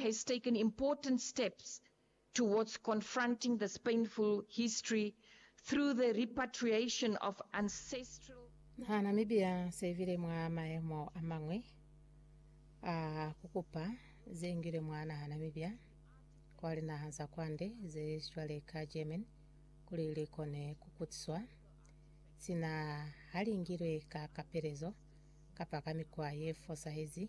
has taken important steps towards confronting this painful history through the repatriation of ancestral. Naha Namibia se ibile mwa mayemo a mañwi a ku kupa ze ngile mwa naha Namibia kwa linaha za kwande ze cwale ka Germany kuli li kone ku kutiswa, sina ha li ngilwe ka kapelezo kapa ka mikwa ye fosahezi.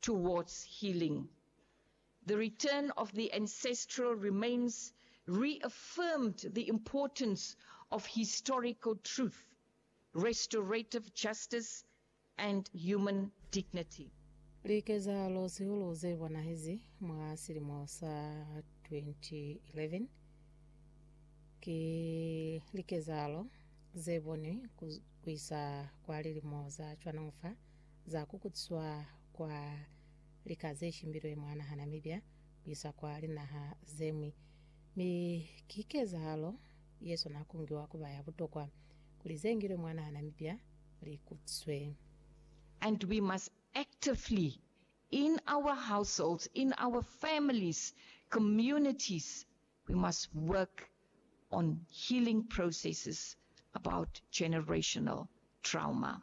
towards healing. The return of the ancestral remains reaffirmed the importance of historical truth, restorative justice, and human dignity. Likezahalo zihulu ze bonahezi mwa silimo sa 2011 ki likezahalo ze bonwi ku isa kwa lilimo za cwano'o fa. za ku kutiswa kwa lika ze shimbilwe mwa naha Namibia ku isa kwa linaha ze ñwi, mi ki kezahalo ye swana ku ngiwa ku ba ya butokwa kuli ze ngilwe mwa naha Namibia li kutiswe. And we must actively, in our households, in our families, communities, we must work on healing processes about generational trauma.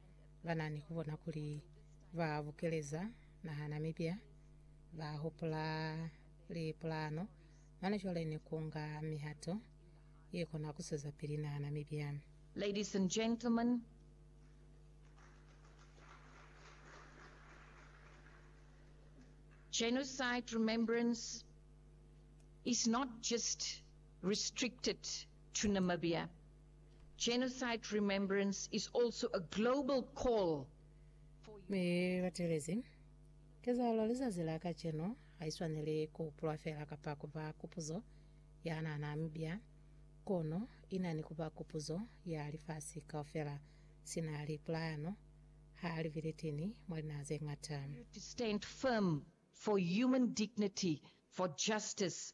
ba na ni ku bona kuli ba bukeleza nahana mipya, ba hupula lipulano, mane cwale ni ku nga mihato ye kona ku zwezapili nahana mipya. Ladies and gentlemen, Genocide remembrance is not just restricted to Namibia. Genocide Remembrance is also a global call for Mi batelezi, kezahalo lizazi la kacenu haiswaneli kuhupulwa fela kapa kuba kupuzo ya nana-mibya, kono ina ni kuba kupuzo ya lifasi kaufela. Sina lipulayano ha li bilitini mwa linaha zeñata. to stand firm for human dignity, for justice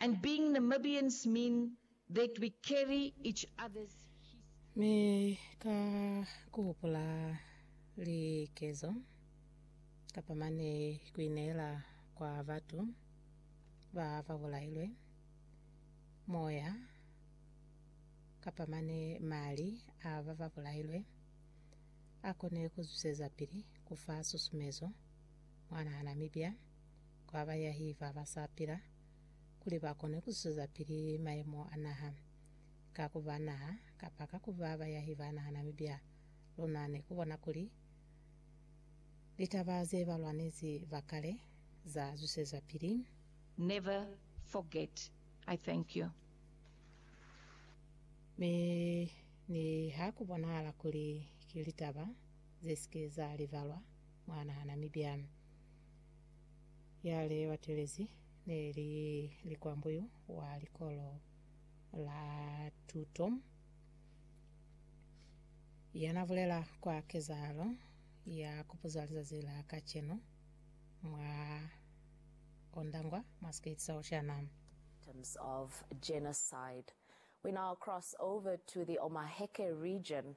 and being Namibians mean that we carry each other's history. Mi ka ku hupula likezo kapa mane ku ineela kwa batu ba ba bulailwe, moya kapa mane mali a ba ba bulailwe, a kone ku zwisezapili ku fa susumezo mwanaa Namibia. kwa bayahi ba ba sa pila kuli ba kone ku zwezapili mayemo a naha. Ka ku ba naha, kapa ka ku ba bayahi ba naha Namibia, luna ne ku bona kuli litaba ze ba lwanezi ba kale za zwisezwapili. Never forget I thank you. Mi ni ha ku bonahala kuli ki litaba ze si ke za libalwa mwa naha Namibia. ya li batelezi ne li likwambuyu wa likolo la tuto ya na bulela kwa kezahalo ya kupuza lizazi la kacenu mwa Ondangwa Masquet Saoshana. victims of genocide. We now cross over to the Omaheke region